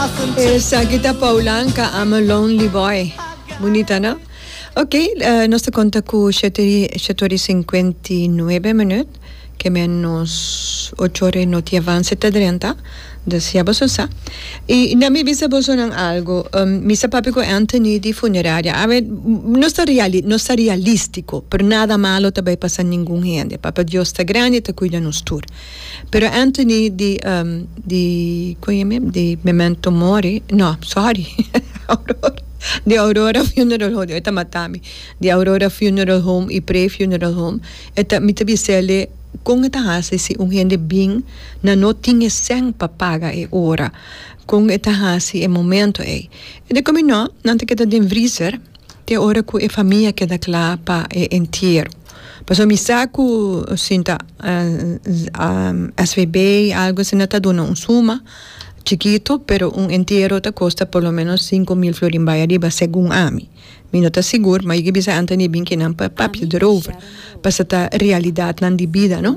Esaki ta Paulan ka ama lonely boy. Bunita no? Ok, eh, nos ta konta ku shete ri- shete ora i sinkuenta i nuebe minüt, ke ménos ocho ora i noti avanse ta drenta. Desea boso sa. I na mi bisa bosonan algu, em, mi sa papia ku Anthony di funeraria. A ver, nos ta reali-, nos ta realístiko, pero nada malo ta bai pasa ningun hende, Papa Dios ta grandi, ta kuida nos tur. Pero Anthony di ehm di con ye mim di Memento Mori no sorry Aurora di Aurora Funeral Home e ta mata mi di Aurora Funeral Home y Prey Funeral Home e ta mi ta bisel'e con e ta haci si un hende bin nan no tin e cen pa paga e ora con e ta haci e momento ey e di con mi no nan ta keda den vriezer te ora cu e famia keda cla pa e entiero pasobra mi sa cu sinta svb y algo asina ta duna un suma chikito pero un entiero ta costa por lo menos cinco mil florin bay ariba segun ami mi no ta sigur ma yo a bisa ante ni e binkinan pa papia derover pasobra ta realidadnan di bida no.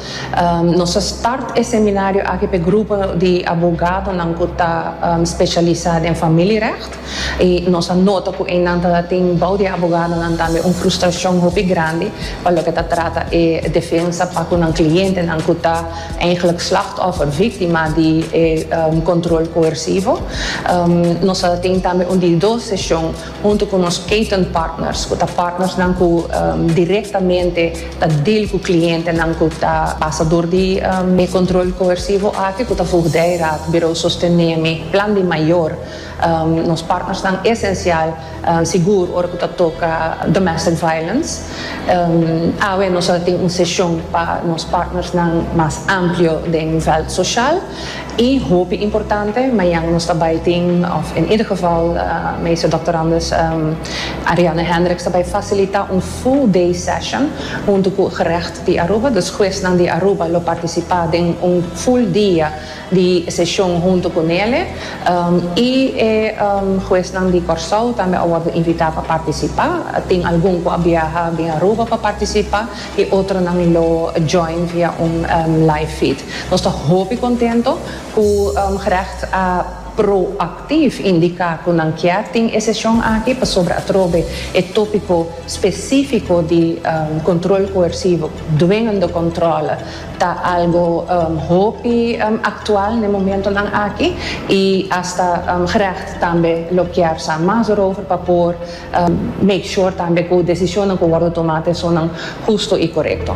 Nos a start e seminario aki p'e grupo di abogadonan ku ta speshialisá den familierègt i nos a nota ku einan ta tin bou di e abogadonan tambe un frustrashon hopi grandi pa loke ta trata e defensa pa ku nan klientenan ku ta eigentlik slachtòffer, víktima, di e kontrol koersivo. Nos a tin tambe un di dos seshon. Huntu ku nos Kaiton Partners, ku ta partnersnan ku direktamente ta dil ku klientenan ku ta pasa dor di e Control Coercivo aki ku ta Voogdijraad, Bureau Sostenemi, Plan di Mayor, nos partnersnan esensial, sigur ora ku ta toka Domestic Violence. Awe nos a tin un seshon pa nos partnersnan mas amplio den vèlt soshal. I hopi importante, mañan nos ta bai tin, of in ieder geval Meester Doctorandus Ariane Hendricks ta bai facilita un full day session hunto cu Gerecht di Aruba, dus huesnan di Aruba lo participa den un full dia di session hunto cu Nele, i e huesnan di Corsou tambe a wordo invita pa participa, tin algun cu a biaha bin Aruba pa participa, E otronan lo join via un live feed. Nos ta hopi contento cu Gerecht a proactief indica cu nan kier tin e sesion aki pasobra atrobe e topico specifico di control coercivo, dwingende controle, ta algo hopi actual n'e momentonan aki y hasta Gerecht tambe lo kier sa mas erover pa por Make sure tambe cu decisionnan cu wordo toma t'esonan husto y corecto.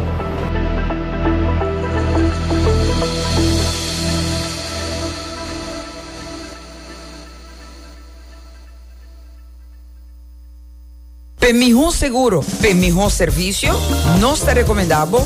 P'e miho seguro, p'e miho servicio, nos ta recomenda bo